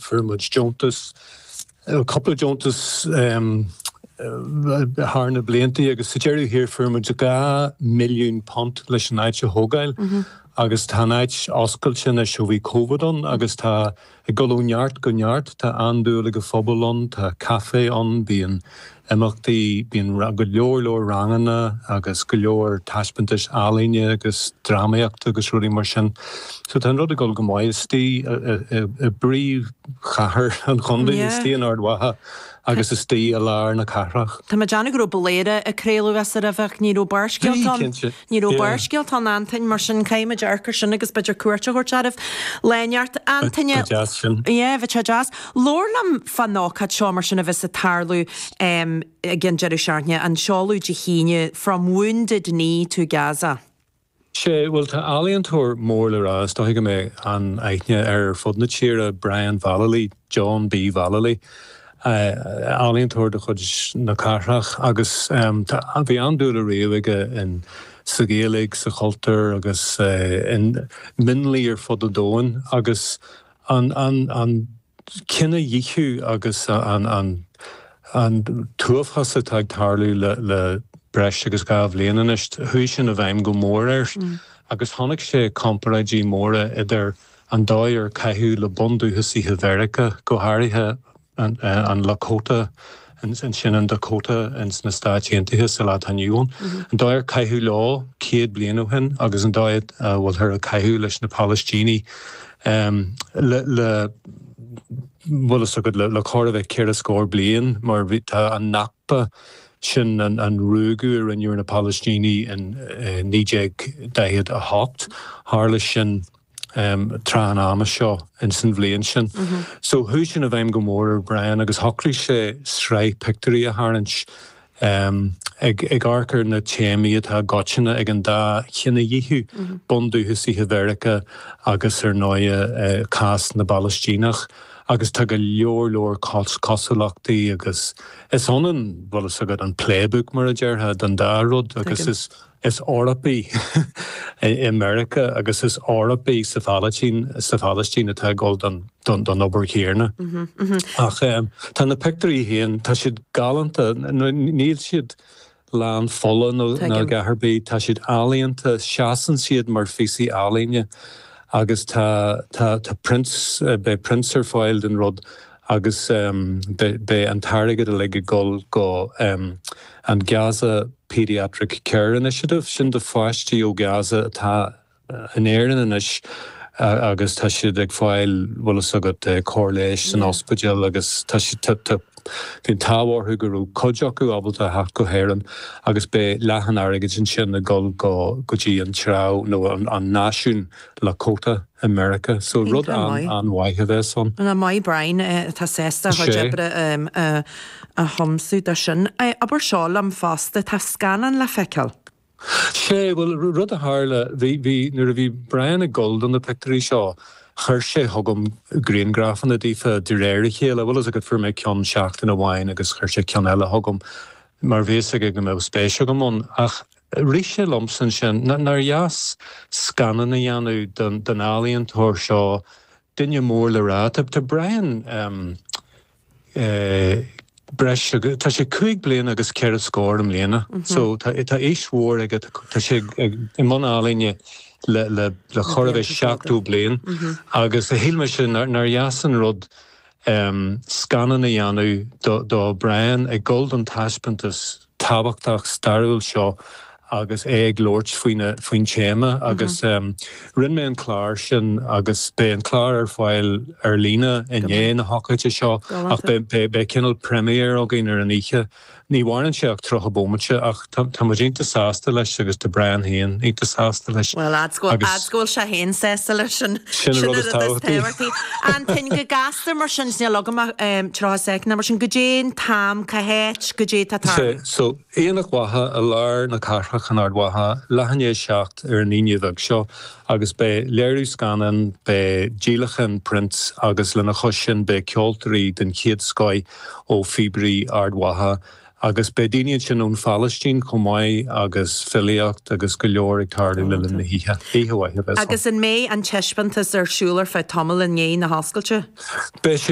Fuair muid deontas, cupla deontas thar na bliantaí agus sa deireadh thiar fuair muid dhá milliún punt leis an áit a thógáil agus tá an áit oscailte anois ó bhí Covid ann agus tá ag gabháil ó neart go neart, tá an-dúil ag an phobal ann, tá caifé ann, bíonn imeachtaí, bíonn go leor leor ranganna agus go leor taispeantais ealaíne agus dramaíochta agus rudaí mar sin. So tá an rud ag gabháil go maith istigh i bpríomhchathair an chontae, istigh in Ard Mhacha agus istigh i lár na cathrach. Tá mé ag déanamh go raibh Bladhaire ag craoladh as aréir, ach ní raibh Barrscéalta ann? Ní raibh Barrscéalta ann, a Antaine, mar sin caithfidh muid amharc ar sin agus b'fhéidir cuairt a thabhairt oraibh le ceart, a Antaine. Bheadh sé deas sin. yeah, bheadh sé deas. Labhair liom fán ócáid seo mar sin a bheas ag tarlú ag an deireadh seachtaine, an seoladh Dé hAoine, From Wounded Knee to Gaza. Sé, bhuel tá ealaíontóir mór le rá, is dóiche go mbeidh an-aithne air ar fud na tíre, Brian Vallely. John B. Vallely, ealaíontóir de chuid na cathrach agus bhí an-dúil ariamh aige sa Ghaeilge, sa chultúr agus i mionlaigh ar fud an domhain agus an cinedhíothú agus an t-uafás atá ag tarlú le breis agus dhá bhliain anois, chuaigh sin i bhfeidhm go mór air agus chonaic sé comparáidí móra idir an dóigh ar caitheadh le bundúchasaithe Mheiriceá, go háirithe an Lakota, ansin in Dakota ins na Stáit Aontaithe sa lá atá inniu ann, an dóigh ar caitheadh leo céad bliain ó shin agus an dóigh a bhfuilthear ag caitheamh leis na Palaistínigh le, bhfuil fhios agat, le chóir a bheith ceithre scór bliain mar tá an Nakba, sin an ruaigeadh a rinneadh ar na Palaistínigh in 1948, tharla sin. em, tráth an ama seo ins an bhliain sin. So chuaigh sin i bhfeidhm go mór ar Brian agus shocraigh sé sraith pictiúirí a tharraingt, em, ag, ag amharc ar na téamaí atá i gcoitinne ag an dá chinedhíothú, bundúchasaithe Mheiriceá agus ar ndóighe, eh, cás na bPalaistíneach agus tá go leor leor cos, cosúlachtaí agus is ionann, bhfuil fhios agat, an playbook mar a déarfá, don dá rud agus is. Is Eorpaigh i Meiriceá agus is Eorpaigh sa Phalaistín sa Phalaistín atá ag gabháil don don don obair chéanna. Ach tá na pictiúirí féin tá siad galánta níl siad lán fola nó a dhath ar bith tá siad ealaíonta seasann siad mar phíosaí ealaíne agus tá tá tá prints beidh prints ar fáil den rud agus beidh an t-airgead uilig ag dul go dtí an Gaza Paediatric Care Initiative, sin do pháistí ó Gaza atá in Éirinn anois agus tá siad ag fáil, bhfuil fhios agat, cóir leighis san ospidéal agus tá siad, bhí an t-ádh orthu go raibh cuid acu ábalta a theacht go hÉireann agus beidh leath an airgid ansin ag dul go dtí an treabh nó an náisiún Lakota. i Meiriceá. So rud an-an-mhaith a bheas ann. An-mhaith Brian atá sásta a chuid oibre a thiomsú do sin? Abair seo liom fosta, tá scannán le feiceáil. Sé, bhuel, rud a tharla, bhí, bhí, nuair a bhí Brian ag dul do na pictiúirí seo, chuir sé chugam griangrafanna daofa de réir a chéile, bhfuil fhios agat, fuair mé ceann seachtain amháin agus chuir sé ceann eile chugam mar bhí fhios aige go mbeadh spéis agam ann ach, Rith sé liomsa ansin nár dheas scannán a dhéanamh den ealaíontóir seo, duine mór le rá. Tá Brian breis agus, tá sé cúig bliana agus ceithre scór i mbliana so tá aois mhór aige, tá sé i mbun ealaíne le chóir a bheith seachtó bliain agus shíl mise nár dheas an rud scannán a dhéanamh de Brian ag dul don taispeántas tábhachtach stairiúil seo agus é ag labhairt faoina, faoin téama agus rinne mé an clár sin agus beidh an clár ar fáil ar líne i ndiaidh na hócáide seo ach beidh cineál premiere againn ar an oíche. Ní mhaireann sé ach 30 bómaite ach tá muid iontach sásta leis agus tá Brian féin iontach sásta leis. Bhuel, fhad's go bhfuil sé féin sásta leis, sin an rud is tábhachtaí. Antain, Go gasta mar sin, níl agam ach tríocha soicind, mar sin goidé an t-am, Cá háit, goidé tá ag tarlú? So, Aonach Mhacha i lár na cathrach in Ard Mhacha, leath i ndiaidh a seacht ar an Aoine bheag seo agus beidh léiriú scannáin, beidh díolachán prints agus lena chois sin beidh ceoltóirí den chéad scoith ó phíobairí Ard Mhacha agus beidh daoine ansin ón Phalaistín chomh maith agus filíocht agus go leor ag tarlú le linn na hoíche. Oíche mhaith a bheas ann. Agus an mbeidh an taispeántas ar siúl ar feadh tamaill i ndiaidh na hoscailte? Beidh.